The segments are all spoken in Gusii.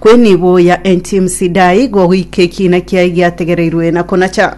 Kweniboya enTimu Sidai igo goika ekiina kiaye giategereirwe na konacha.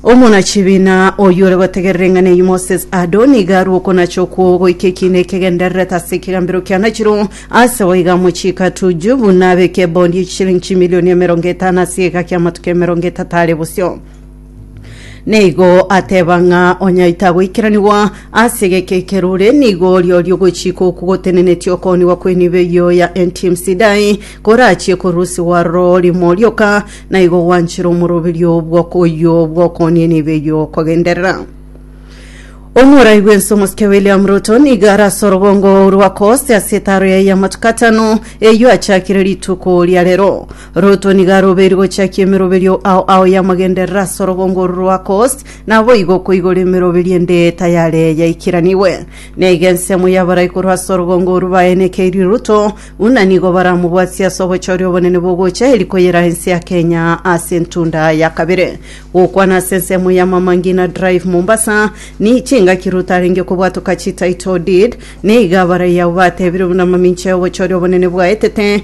Omonachibina oyio ore gotegerera eng'ana eyio Moses Ado nigo arue okonacha okwo goika ekiina ekegendererete ase ekegambero kianachirwe ase goiga amochiko atuju buna abeke ebondi ye chisilingi chimilioni emerongo etano ase egeka ki'amatuko emerongo etato are bosio. Nigo ateba ng'a onyaita goikeranigwa ase gekekerure nigo riori ogochika oku gotenenetie okoonigwa kw'enibo eyio ya NTM Sidai korachie korusigwa aroro rimo rioka, na igo gwanchire omoroberio bw'okoyio bw'okoonia enibo eyio kogenderera. Omorai bw'ense omosike William Ruto nigo arase orogongo rwa Coast ase etaaro yaye y'amatuko atano eyio achakire rituko ria rero. Ruto nigo arobeiri gochakia emeroberio ao ao y'amagenderero ase orogongo oru rwa Coast, naboigo okoigora emeroberio ende tayare yaikiranigwe. Naigo ensemo y'abarai korwa ase orogongo oru baenekeirie Ruto, buna nigo baramobwatie ase obochori obonene bogocha eeri koyera ense ya Kenya ase entunda ya kabere. Gokwana ase ensemo ya Mama Ngina Drive Mombasa, ni chingaki Ruto arenge kobwatoka chi title deed, naigo abarai abo batebire buna mamincha y'obochori obonene bwaetete,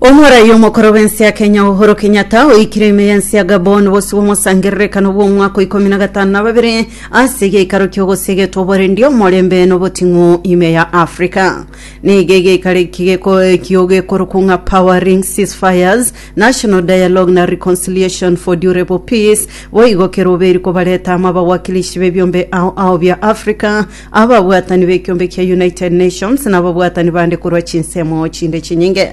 Omoraia omokoro bw'ense ya Kenya Uhuru Kenyatta oikire ime y'ense ya Gabon bosio bw'omosangererekano bw'omwaka ikomi na gatano na babere ase egeikaro ki'ogosia egetwa Oborendi, Omorembe, na Oboting'u ime ya Africa. Nigo egeikaro eki gekoekio gekorokwo ng'a Powering Ceasefires, National Dialogue na Reconciliation for Durable Peace, boigo keroberi kobareta amo abawakilishi b'ebiombe ao ao bia Africa Ababwatani b'ekiombe kia United Nations na ababwatani bande korwa chinsemo chinde chinyinge.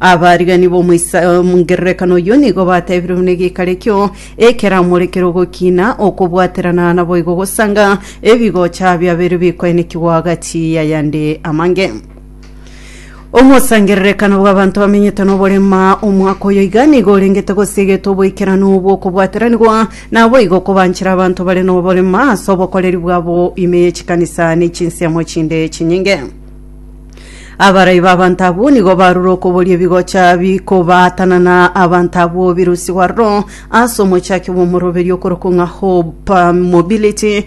Abarigani b'omoisa-o-mongererekano oyio nigo batebire buna egeikaro ekio ekeramorekire ogokina, okobwaterana, naboigo gosanga ebigocha biabeire bikoenekigwa gati y'ayande amange. Omosangererekano bw'abanto bamenyete n'oborema omwaka oyo iga nigo orengete gose egetwe oboikeranu bw'okobwateranigwa naboigo kobanchera abanto bare n'oborema ase obokoreri bwabo ime ye chikanisa ne chinsiamo chinde chinyinge. Abarai b'abanto abwo nigo barure okoboria ebigocha bikobaatanana abanto abwo birusigwe aroro ase omochaki bw'omoroberio okorokwa ng'a Hope Mobility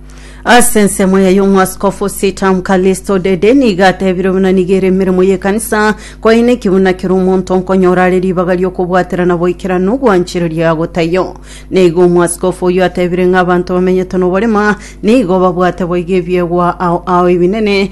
Ase ensemo eye y'omwaskofu Sitamu Kalisto Dede nigo atebire buna nigo ere emeremo y'ekanisa koine ki buna kera omonto nkonyora are ribaga ri'okobwaterana boikeranu ogwanchereria agotaiyo. Nigo omwaskofu oyio atebire ng'a abanto bamenyete noborema nigo babwate boigo ebiegwa ao ao ebinene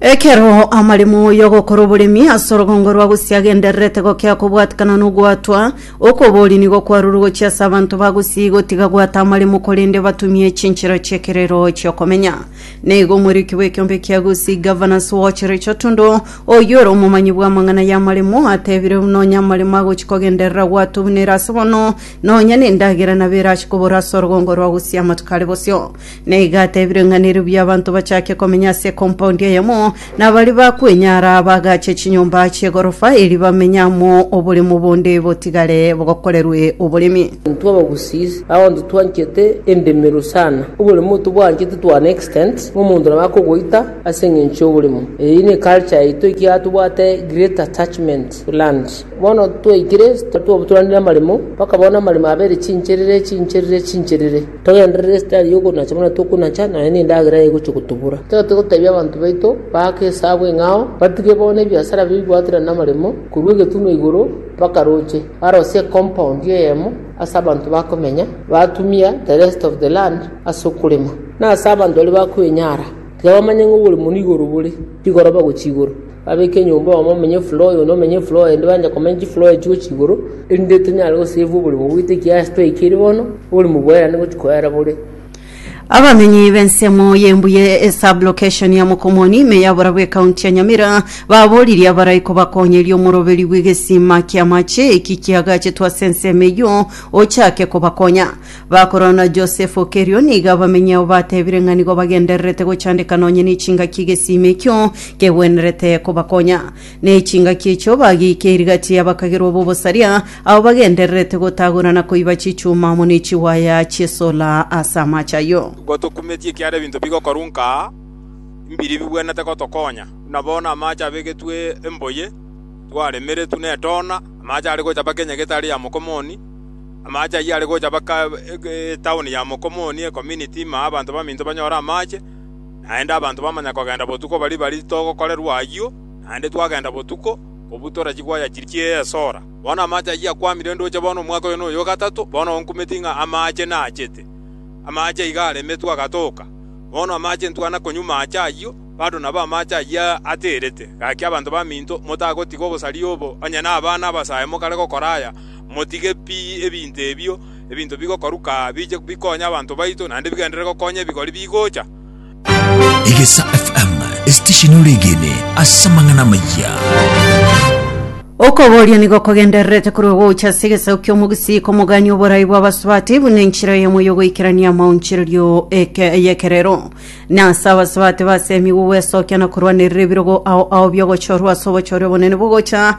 Ekero amaremo y'ogokora oboremi ase orogongo rwa Gusii agendererete gokea kobwatikana na ogwatwa, okobori nigo kwarure gochia ase abanto ba Gusii gotiga gwata amaremo korende batumie chinchera chi'ekerero chi'okomenya. Naigo omoriki bw'ekeombe kia Gusii Governors Watch Richard Tundo, oyio ore omomanyi bw'amang'ana y'amaremo, atebire buna onye amaremo agochia kogenderera gwatwa buna ere ase bono, nonya nendagera nabo erache kobora ase orogongo rwa Gusii amatuko are bosio. na iga atebire ng'a neriobuya abanto bachake komenya ase ekompaundi eyemo, na baria bakwenyara bagache chinyomba chi'egorofa erio bamenye amo, oboremo bonde botigare bokorerwe oboremi. Intwe abagusii abanto twanchete endemero sana, oboremo tobwanchete to an extent ng'a omonto nabo akogoita ase eng'encho y'oboremo. Eyio ne culture yaito ekiagera tobwate great attachment to land. Bono twaikire twabaturanire amaremo mpaka bono amaremo abere chincherere chincherere chincherere. Togenderere esitari y'okonacha buna tokonacha, nonya nendagera egochia gotobura. Tiga togotebia abanto baito baake esabu eng'ao, batige bono ebiasara bibwatire namaremo, korwa egetunwa igoro mpaka roche, barosie ecompound eyemo ase abanto bakomenya, batumia the rest of the land ase okorema. Na ase abanto baria bakwenyara, tiga bamanye ng'a oborimo nigo oro bore, rigoroba gochia igoro. Babeke enyomba oyomo amenye efloor oyo onde amenye efloor eyende banje komenya chifloor echio gochia igoro, erinde tonyare gosave oborimo bwaito ekiagera twaikire bono, oborimo bwerane gochia koera bore. Abamenyi b'ensemo y'embuya e sub-location ya Mokomoni ime ya Borabu Ekaunti ya Nyamira baboririe abarai kobakonyeria omoroberi bw'egesima ki'amache eki kiagachetwe ase ensemo eyio ochake kobakonya. Bakorora Josepho kerio nigo abamenyao batebire ng'a nigo bagendererete gochandeka nonye nechingaki egesima ekio kegwenerete kobakonya. Nechingaki echio bagiika erigati y'abakagerwa b'obosaria, abo bagendererete gotagora na koiba chichuma amo ne chiwaya chi'esola ase amache ayio. Igo tokumetie ekiagera ebinto bigokorwa nka mbiri bigwenerete gotokonya, buna bono amache abegetwe emboye, twaremeretwe netoona, amache are gochapa kenya getari ya mokomoni, Amaache ayio are gocha baka etaoni ya Mokomoni, ecominiti ime abanto baminto banyore amaache, naende abanto bamanya kogenda botuko baria baria togokorerwa ayio, naende twagenda botuko, kobua tore chigwaya chiria chie esora. Bono amaache ayio akwamire ndoche bono omwaka oyo noyo o gatato bono onkumeti ng'a amaache naachete. Amaache iga aremetwe agatoka. Bono amaache ntwana konywa maache ayio, bado nabo amaache ayio aterete. Gaki abanto baminto, motagotiga obosaria obo, onye nabana abasae mokare gokora aya, Motige pi ebinto ebio, ebinto bigokoruka biche bikonye abanto baito, naende bigenderere gokonya ebigori bigocha. Egesa FM, esitesheni ore egene ase amang'ana amaya. Okoboria nigo kogendererete korwa gocha ase egesaku ki'omogusii komogania oborai bw'abasubati buna enchera eyemo y'ogoikerania amaonchererio eke- y'ekerero. Na ase abasubati basemigwe gwesokia na korwanerera ebirogo ao ao bi'ogochorwa ase obochore obonene bogocha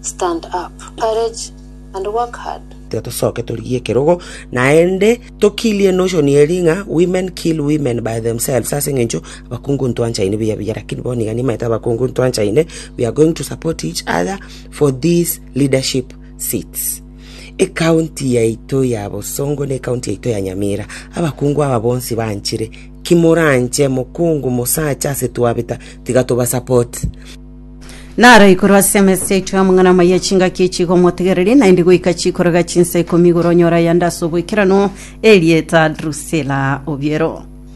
Stand up, courage and work hard. Tosoke torigie ekerogo, naende tokirie enotion eria ng'a women kill women by themselves ase eng'encho abakungu ntwanchaine buya buya lakini bono iga nimaete abakungu ntwanchaine we are going to support each other for these leadership seats ekaunti yaito ya bosongo na ekaunti yaito ya nyamira abakungu aba bonsi banchire kimoranche mokungu mosacha ase twabeta tiga tobasupport Naro igoro ase emesa yaito y'amang'ana amaya chingaki echi igomotegereria, naende goika chikoroga chinsa ikomi igoro onyore ayande ase oboikeranu, erieta Drusila obiero.